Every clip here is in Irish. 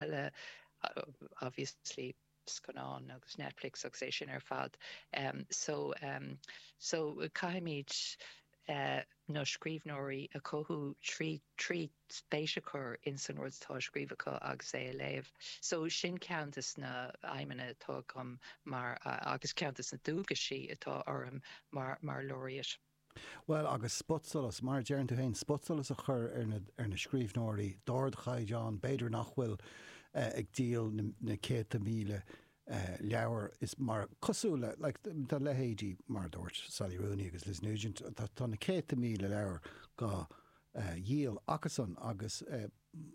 eile, obviously scannáin agus Netflix agus é sin ar fad, so so caithfimid na scríbhneoirí a chothú trí trí spéis a chur in insan rud atá á scríobh acu agus é a léamh, so sin ceann de na aidhmeanna atá agam mar agus ceann de na dualgais atá orm mar mar Laureate. Bhuel, agus spotsolas, mar a deireann tú fhéin, spotsolas a chur ar na scríbhneoirí d'ardchaighdeán, b'fhéidir nach bhfuil ag díol na céadta míle leabhar, is mar, cosúil le, like, leithéidí, mar a dúirt Sally Rooney agus Liz Nugent, tá na céadta míle leabhar dhá dhíol acusan agus,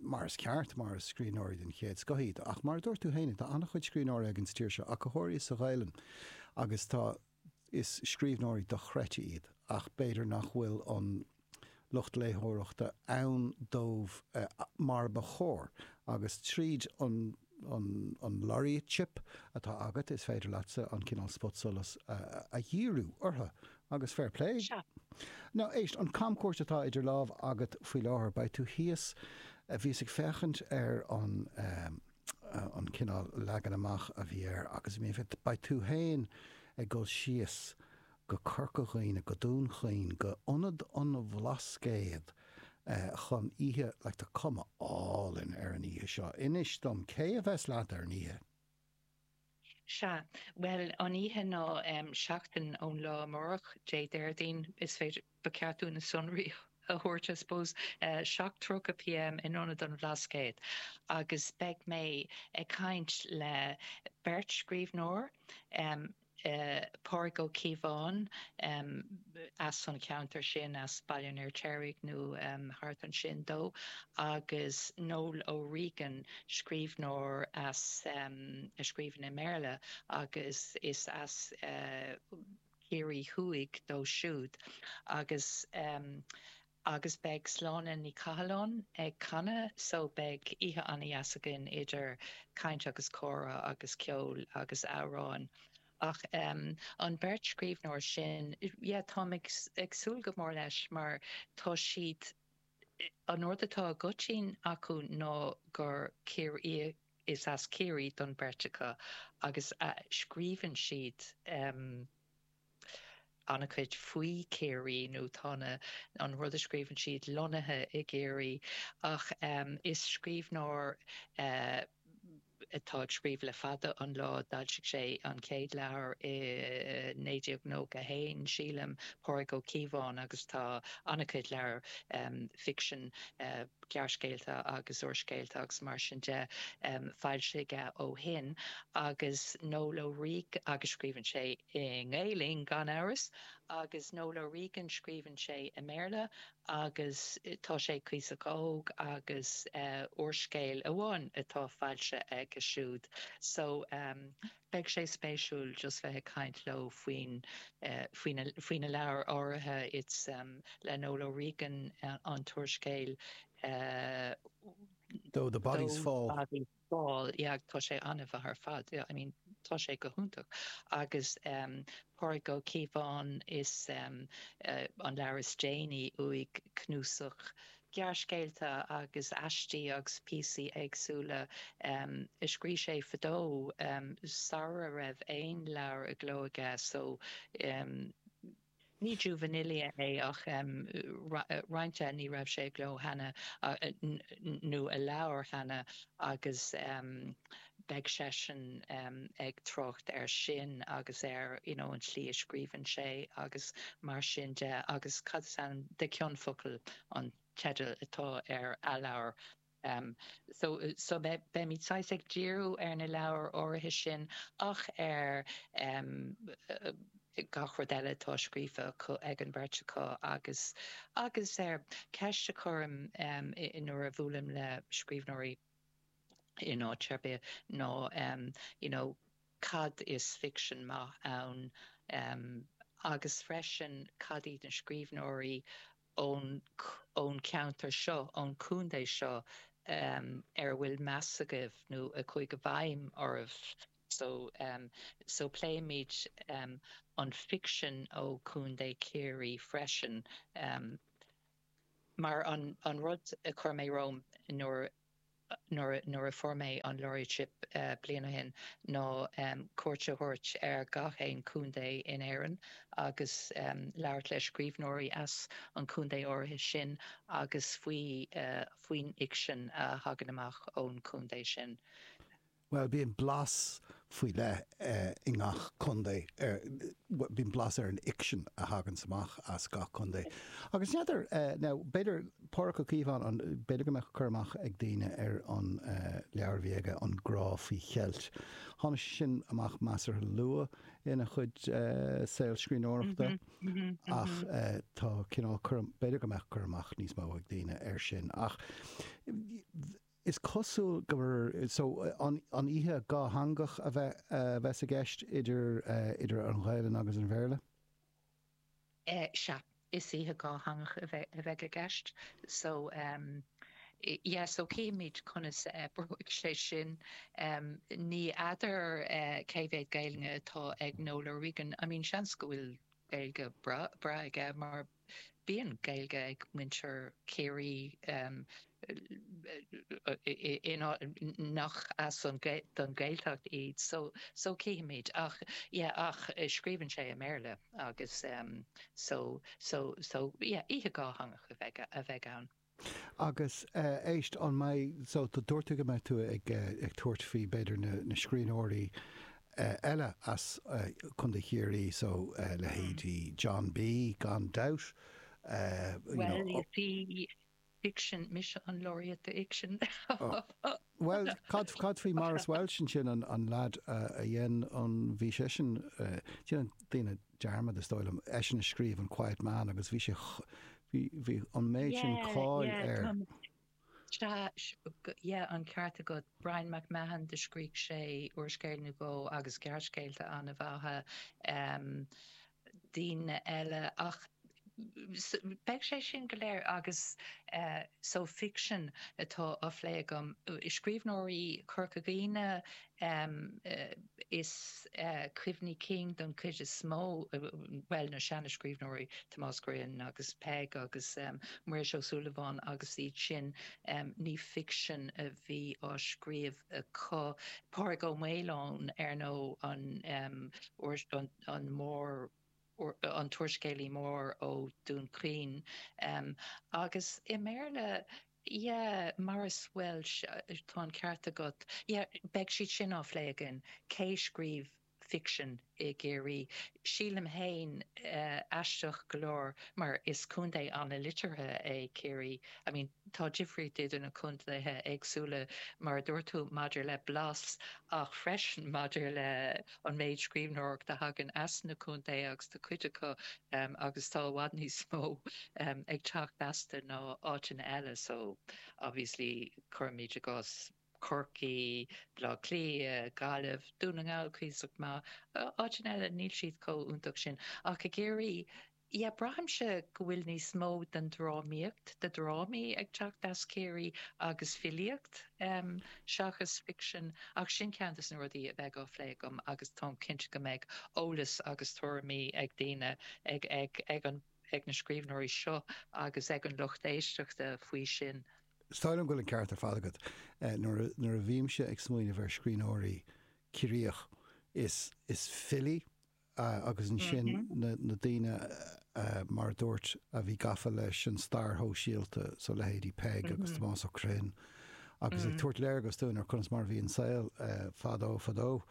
mar is ceart, mar is scríbhneoirí den chéad scoth iad, ach mar a dúirt tú fhéin, tá an-chuid scríbhneoirí againn sa tír seo, go háirithe sa Ghaelainn, agus tá. Is scríbhneoirí dochreidte iad ach b'fhéidir nach bhfuil an lucht léitheoireachta ann dóibh mar ba chóir agus tríd an Laureateship atá agat is féidir leatsa an cineál spotsolas a dhíriú orthu agus fair play! Now, éist, an camchuairt atá idir lámh agat faoi láthair, beidh tú thíos, bhíos ag féachaint ar an. an cineál leagan amach a bhí air agus, I mean, beidh tú fhéin ag dul síos go Corca Dhuibhne, go Dún Chaoin, go Ionad an Bhlascaod chun oíche, like tá cuma álainn ar an oíche seo, inis dom, cé a bheas leat ar an oíche? Sea. Bhuel, an oíche ná seachtain ón lá amáireach, Dé Déardaoin, is féidir, ba cheart dúinn na sonraí a thabhairt, I suppose, 7:30 pm in Ionad an Bhlascaod agus beidh mé ag caint le beirt scríbhneoir, Pádraig Ó Cíobháin, as an cheantar sin, as Baile an Fhirtéaraigh nó thart ansin dó, agus Noel O'Regan, scríbhneoir as, a scríobhann i mBéarla, agus is as Ciarraí Thuaidh dó siúd, agus, agus beidh Sláine Ní Chathalláin ag canadh, so beidh oíche ana-dheas againn idir caint agus comhrá agus ceol agus amhráin. Ach an beirt scríbhneoir sin, yeah, táim ag súil go mór leis mar tá siad, an rud atá i gcoitinn acu ná gur Ciarraí, is as Ciarraí don bheirt acu agus scríobhann siad an-chuid faoi Chiarraí nó tá an, an rud a scríobhann siad lonnaithe i gCiarraí ach is scríbhneoir atá ag scríobh le fada an lá, d'fhoilsigh sé an chéad leabhar i 1991, sílim, Pádraig Ó Cíobháin, agus tá an-chuid leabhar ficsin, gearrscéalta agus úrscéalta agus mar sin de, foilsithe ó shin. Agus Noel O'Regan, agus scríobhann sé i nGaelainn, gan amhras, agus Noel O'Regan, scríobhann sé i mBéarla, agus tá sé cuíosach óg agus úrscéal amháin atá foilsithe aige siúd so beidh sé spéisiúil just bheith ag caint leo faoin, faoina leabhair áirithe is le Noel O'Regan an t-úrscéal Though the Bodies Fall. Tá sé an-mhaith ar fad I mean tá sé go hiontach agus em Pádraig Ó Cíobháin is em an leabhar is déanaí uaidh cnuasach gearrscéalta agus aistí agus píosaí éagsúla em a scrígh sé fadó em sara raibh aon leabhar i gcló aige so em Ní juvenilia é ach, em, roinnt eh, ní raibh sé i gcló cheana nó i leabhar cheana agus, em, beidh seisean, em, ag trácht ar sin agus ar, you know, an tslí a scríobhann sé agus mar sin de agus cad is ainm, De Chion Focal an teideal atá ar a leabhar. em. so. so. beimid saghas ag díriú ar na leabhair áirithe sin ach ar em. gach rud eile atá scríofa ag an mbeirt acu agus. agus em. ceist a chuirim em. nuair a bhuailim le scríbhneoirí in áit ar bith ná em. you know cad is ficsean maith ann em. agus freisin cad iad na scríbhneoirí, ón cheantar seo, ón chontae seo, ar a bhfuil meas agaibh nó a chuaigh i bhfeidhm oraibh. So, so pléimid an ficsean ó Chontae Chiarraí freisin, mar an rud a chuir mé romham nuair a. nuair a fuair mé an Laureateship bliain ó shin, ná cuairt a thabhairt ar gach aon chontae in Éirinn agus labhairt le scríbhneoirí as an chontae áirithe sin agus faoin fhicsean a thagann amach ón chontae sin. Bhuel, bíonn blas faoi leith i ngach contae ar, bhuel, bíonn blas ar an fhicsean a thaganns amach as gach contae. Agus n'fheadar, now, b'fhéidir Pádraig Ó Cíobháin, b'fhéidir go mbeadh cur amach ag daoine ar an leabhar a bhí aige, An Grá Faoi Cheilt. Tháinig sé sin amach measartha luath ina chuid saol scríbhneoireachta ach tá cineál, b'fhéidir go mbeadh cur amach níos mó ag daoine air sin ach, Is cosúil gur so, an oíche dhátheangach a bheas i gceist idir an Ghaelainn agus an Bhéarla. Sea, is oíche dhátheangach a bheidh i gceist. So, yeah, so chífimid conas a oibreoidh sé sin. Ní fheadar cé mhéad Gaelainne atá ag Noel O'Regan, I mean, seans go bhfuil Gaeilge breá aige mar. Bíonn Gaeilge ag muintir Chiarraí in áiteanna nach as don Ghaeltacht iad so chífimid ach yeah ach scríobhann sé i mBéarla agus so so so yeah oíche dhátheangach a bheidh ann. Agus éist, an mbeidh, so, dúirt tú go mbeidh tú ag tabhairt faoi b'fhéidir na scríbhneoirí eile as Contae Chiarraí, so leithéidí John B. gan dabht, you know. Bhuel, is í ficsean, mise an Laureate d'Fhicsean! Bhuel, cad faoi Maurice Walsh ansin, an lead a dhein an, bhí seisean, déanann daoine dearmad is dóigh liom, eisean a scríobh an Quiet Man agus bhí sé, bhí an méid sin cáil air. Sea, sea, an ceart agat, Bryan MacMahon do scrígh sé úrscéal nó dhó agus gearrscéalta an-mhaithe. daoine eile ach beidh sé sin go léir agus so fiction atá á phlé agam, scríbhneoirí Chorca Dhuibhne is cuimhní cinn don cuid is mó, bhuel na seana scríbhneoirí Tomás Ó Criomhthain agus Peig agus Muiris Ó Súilleabháin agus iad sin ní fiction a bhí á scríobh acu, Pádraig Ua Maoileoin ar ndóigh an an mór, an t-úrscéalaí mór ó Dún Chaoin, agus i mBéarla, yeah, Maurice Walsh, tá an ceart agat, yeah, beidh siad sin á phlé againn, cé scríobh ficsean i gCiarraí? Sílim fhéin, aisteach go leor, mar is contae an-liteartha é Ciarraí, I mean, tá difríocht idir na contaetha éagsúla, mar a dúirt tú, maidir le blas ach freisin maidir le. an méid scríbhneoireacht a thagann as na contaetha agus tá cuid acu agus tá i bhfad níos mó ag teacht astu ná áiteanna eile so obviously cuirimid i gcás Corcaigh, Baile Átha Cliath, Gaillimh, Dún na nGall cuíosach maith, áiteanna eile níl siad chomh iontach sin ach i gCiarraí, Yeah, braithimse go bhfuil níos mó den drámaíocht, de dhrámaí ag teacht as Ciarraí agus filíocht seachas ficsean ach sin ceann de na rudaí a bheidh á phlé agam agus táim cinnte go mbeidh eolas agus tuairimí ag daoine, ag na scríbhneoirí seo agus ag an lucht éisteachta faoi sin. Is dóigh liom go bhfuil an ceart ar fad agat. Nuair a bhímse ag smaoineamh ar scríbhneoirí Ciarraíoch is filí agus ansin na daoine, mar a dúirt, a bhí gafa leis an stair shóisialta, so leithéidí Peig agus Tomás Ó Criomthain, agus ag tabhairt léargas dúinn ar conas mar a bhí an saol fadó fadó.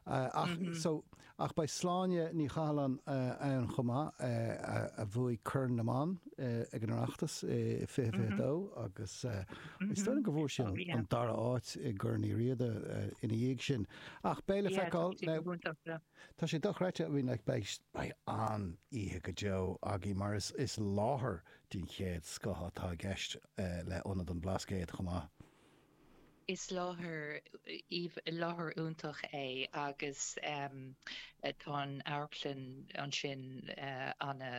Ach, so, ach beidh Sláine Ní Chathalláin ann chomh maith, a bhuaigh Corn na mBan ag an Oireachtas i fiche fiche dó agus is dóigh liom go bhfuair sí an dara áit i gCorn Uí Riada ina dhiaidh sin. Ach beidh le feiceáil. Tá sé dochreidte, I mean, like, beidh an-oíche go deo againn mar is láthair den chéad scoth atá i gceist le Ionad an Bhlascaoid chomh maith. Is láthair, láthair iontach é agus tá an amharclann ansin ana,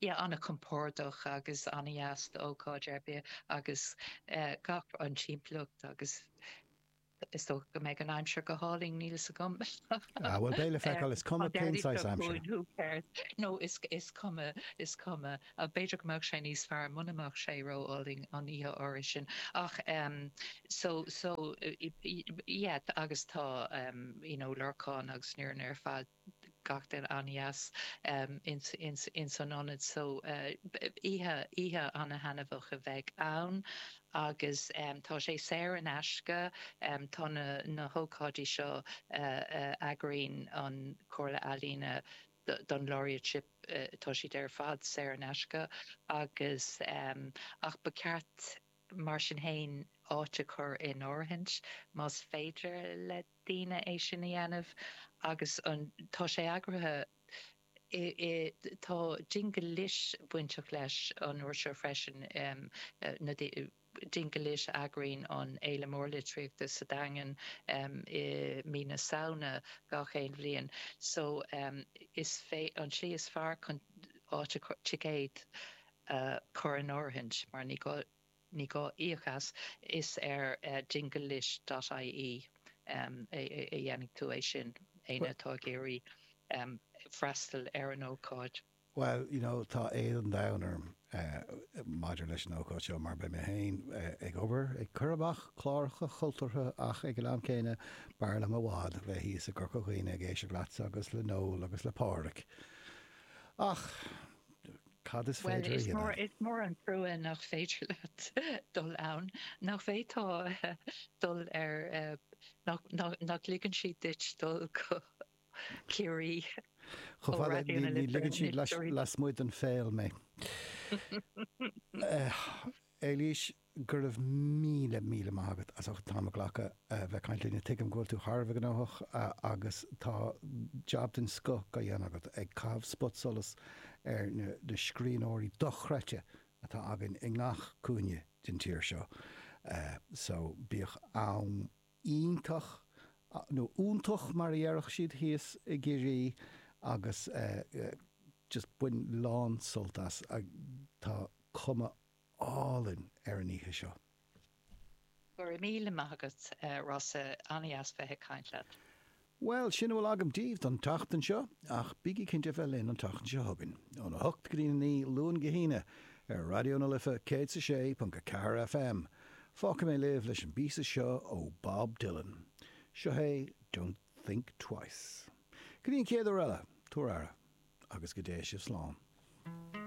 yeah, ana-chompordach agus ana-dheas d'ócáid ar bith agus gach, an timpeallacht agus. Is dócha go mbeidh an aimsir go hálainn, níl 'fhios agam. Ah, bhuel, beidh le feiceáil, is cuma cén saghas aimsire. Who cares? No, is cuma, is cuma. B'fhéidir go mbeadh sé níos fearr muna mbeadh sé ró-álainn an oíche áirithe sin. Ach em, so, so, yeah, agus tá, em, you know, Lorcán agus an fhoireann ar fad. gach duine an-deas ins an ionad so oíche oíche an-thaitneamhach a bheidh ann agus tá sé saor in aisce, tá na hócáidí seo a eagraíonn an Chomhairle Ealaíne don Laureateship tá siad ar fad saor in aisce agus ach ba cheart mar sin fhéin áit a chur in áirithint más féidir le daoine é sin a dhéanamh agus an, tá sé eagraithe i, i, tá Dingle Lit bainteach leis an uair seo freisin, Dingle Lit a eagraíonn an fhéile mhór litríochta sa Daingean i mí na Samhna gach aon bhliain so is, an tslí is fearr chun áit a, ticéad a chur in áirithint mar ní gá, Ní gá íoc as, is ar Dingle Lit dot ie a dhéanfaidh tú é sin, éinne atá ag iarraidh freastal ar an ócáid. Bhuel, you know, tá éad an domhain orm maidir leis an ócáid seo mar beidh mé féin ag obair, ag cur amach cláracha cultúrtha ach ag an am céanna b'fhearr liom i bhfad bheith thíos i gCorca Dhuibhne ag éisteacht leatsa agus le Noel agus le Pádraig ach, Cad is féidir a dhéanamh? Bhuel, is mór, is mór an trua nach féidir leat dul ann, nach bhféadfá dul ar, nach, nach, nach ligeann siad duit dul go Ciarraí ó Raidió na Life, na Lifirí. Chomh fada, ní, ní ligeann siad lais, lasmuigh den Pháil mé. Eilís, Go raibh míle, míle maith agat as ucht an t-am a ghlacadh bheith ag caint linne. Tuigim go bhfuil tú thar a bheith gnóthach agus tá jab den scoth á dhéanamh agat ag caitheamh spotsolas ar na scríbhneoirí dochreidte atá againn i ngach cúinne den tír seo so bíodh am iontach, nó iontach mar a déarfadh siad thíos i gCiarraí, agus just bain lán sult as, tá cuma álainn ar an oíche seo. Go raibh míle maith agat Rossa, an-dheas bheith ag caint leat. Bhuel, sin a bhfuil agam daoibh don tseachtain seo, ach bígí cinnte a bheith linn an tseachtain seo chugainn, óna hocht go dtí a naoi, Luan go hAoine, ar Raidió na Life 106.4 FM. Fágfaidh mé libh leis an bpíosa seo ó Bob Dylan. Seo é Don't Think Twice. Go dtí an chéad uair eile, tabhair aire, agus go dté sibh slán.